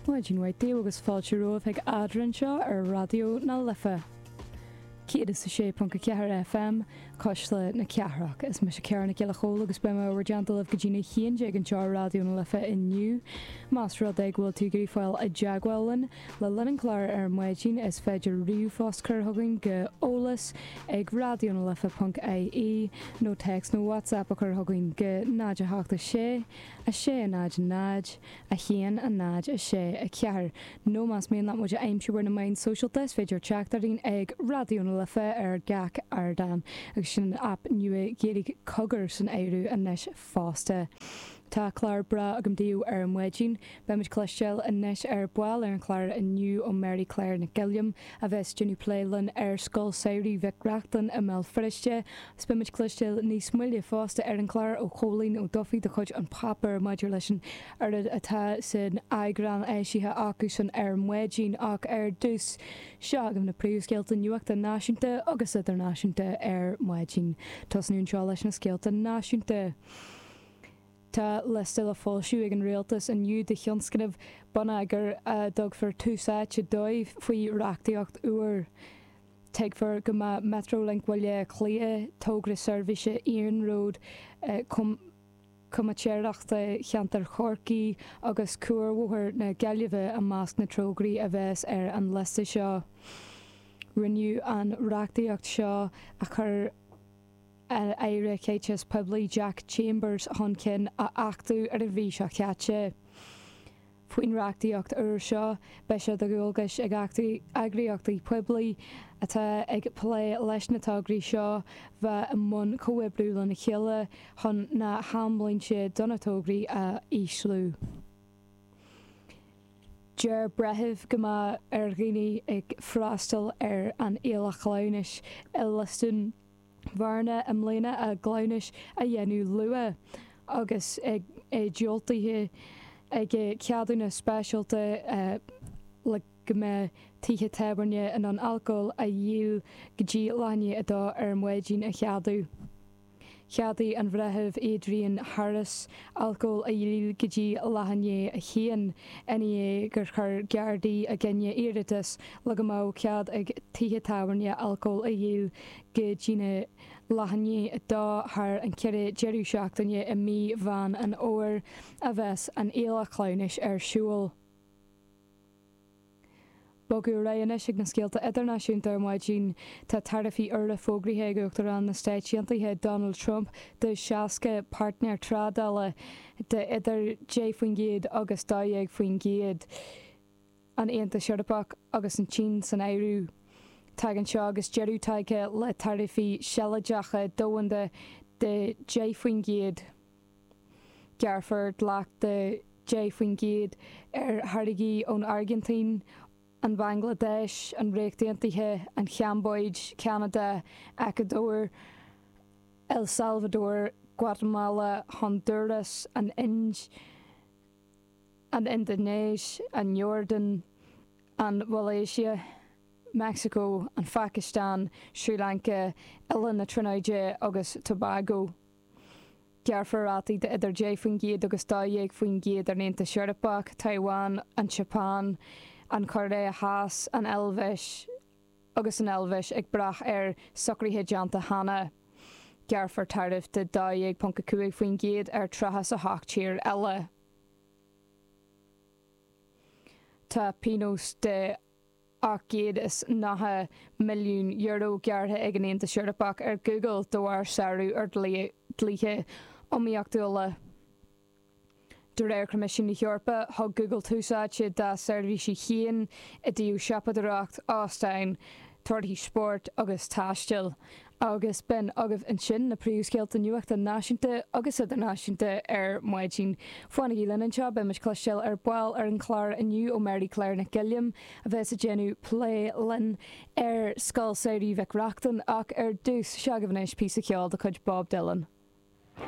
Maidin mhaith daoibh agus fáilte romhaibh chuig Eadrainn anseo ar Raidió na Life 106.4 FM, Cuisle na Cathrach. Is mise Cara Nic Giolla Chomhaill agus beidh mé in bhur dteannta libh go dtí an haon déag anseo ar Raidió na Life inniu. Más rud é go bhfuil tú ag iarraidh fáil i dteagmháil linn le linn an chláir ar maidin is féidir ríomhphost a chur chugainn go eolas ag raidionalife.ie nó téacs nó WhatsApp a chur chugainn go 0 8 6 6, 0, 0, 1, 0, 6, 4, nó más mian leat muid a aimsiú ar na meáin sóisialta, is féidir teacht orainn ag Raidió na Life ar gach ardán, agus sin an aip nua Ghaeilge Cogar san áireamh anois fosta. Tá clár breá agam daoibh ar maidin. Beimid ag cloisteáil anois ar ball ar an chlár inniu ó Mary Claire Nic Uilliam, a bheas ag déanamh plé linn ar Scoil Samhraidh Mhic Reachtain i mBéal Feirste, Is beimid ag cloisteáil níos moille fosta ar an chlár ó Chóilín Ó Dufaigh de chuid An Páipéar maidir leis an oiread atá san eagrán eisithe acusan ar maidin ach ar dtús seo agaibh na príomhscéalta nuachta náisiúnta agus idirnáisiúnta ar maidin. Tosnú anseo leis na scéalta náisiúnta. Tá liosta le foilsiú ag an Rialtas inniu de thionscnaimh bonneagair a dtugfar tús áite dóibh faoi reachtaíocht úr. Tuigtear go mbeidh Metrolink Bhaile Átha Cliath, togra seirbhíse iarnród comaitéireachta cheantar Chorcaí, agus Cuarbhóthar na Gaillimhe i measc na dtograí a bheas ar an liosta seo. Rinneadh an reachtaíocht seo a chuir an Aire Caiteachais Poiblí Jack Chambers chun cinn a achtú ar an mhí seo caite. Faoin reachtaíocht úr seo, beidh sé de dhualgais ag eagraíochtaí poiblí atá ag plé leis na tograí seo bheith i mbun comhoibriú lena chéile chun na hamlínte do na tograí a ísliú. Deir breitheamh go mbeadh ar dhaoine ag freastal ar an fhéile chleamhnais i Lios Dúin Bhearna i mbliana a gcleamhnais a dhéanamh luath agus é diúltaithe aige ceadúnas speisialta le go mbeadh tithe tábhairne in ann alcól a dhíol go dtí leath i ndiaidh a dó ar maidin a cheadú. Cheadaigh an Bhreitheamh Adrian Harris alcól a dhíol go dtí leath i ndiaidh a haon i ndiaidh gur chuir Gardaí i gcoinne iarratas le go mbeadh cead ag tithe tábhairne alcól a dhíol Go dtí na laethanta thar an ceithre deireadh seachtaine i mí Mheán an Fhómhair a bheas an fhéile cleamhnais ar siúl. Bogadh ar aghaidh anois ag na scéalta idirnáisiúnta ar maidin. Tá taraifí úra fógraithe ag Uachtarán na Stáit Aontaithe Donald Trump do 60 páirtnéir trádála de idir 10% agus 12%. an Aontas Eorpach agus an tSín san áireamh. Tagann seo agus deireadh tagtha le taraifí sealadacha domhanda de 10 faoin gcéad. Gearrfar dleacht de 10 faoin gcéad ar tháirgí ón Airgintín, an Bhanglaidéis, an Ríocht Aontaithe, an Chambóid, Ceanada, Eacuadór, El Salvador, Guatamala, Hondúras, an Ind, an Indinéis, an Iordáin, an Mhalaeisia, Meicsiceo, an Phacastáin, Srí Lanca, Oileáin na Tríonóide agus Tobago. Gearrfar rátaí de idir 10% agus 12% ar an Aontas Eorpach, Taiwan, an tSeapáin, an Chóiré Theas, an Eilvéis, agus an Eilvéis ag brath ar socruithe déanta cheana, gearrfar taraif de 12.5% ar 38 tír eile. Tá pionós de €890 milliún gearrtha ag an Aontas Eorpach ar Google de bharr sárú ar dhlíthe iomaíochtúla. De réir Choimisiún na hEorpa, thug Google tús áite dá seirbhísí féin i dtaobh siopadóireacht, óstáin, torthaí spóirt agus taistil, agus b'in agaibh ansin na príomhscéalta nuachta náisiúnta agus idirnáisiúnta ar maidin. Fanaigí linn anseo, beidh muid cloisteáil ar ball ar an chlár inniu ó Mary Claire Nic Uilliam, a bheas ag déanamh plé linn ar Scoil Samhraidh Mhic Reachtain, ach ar dtús, seo agaibh anois píosa ceoil de chuid Bob Dylan.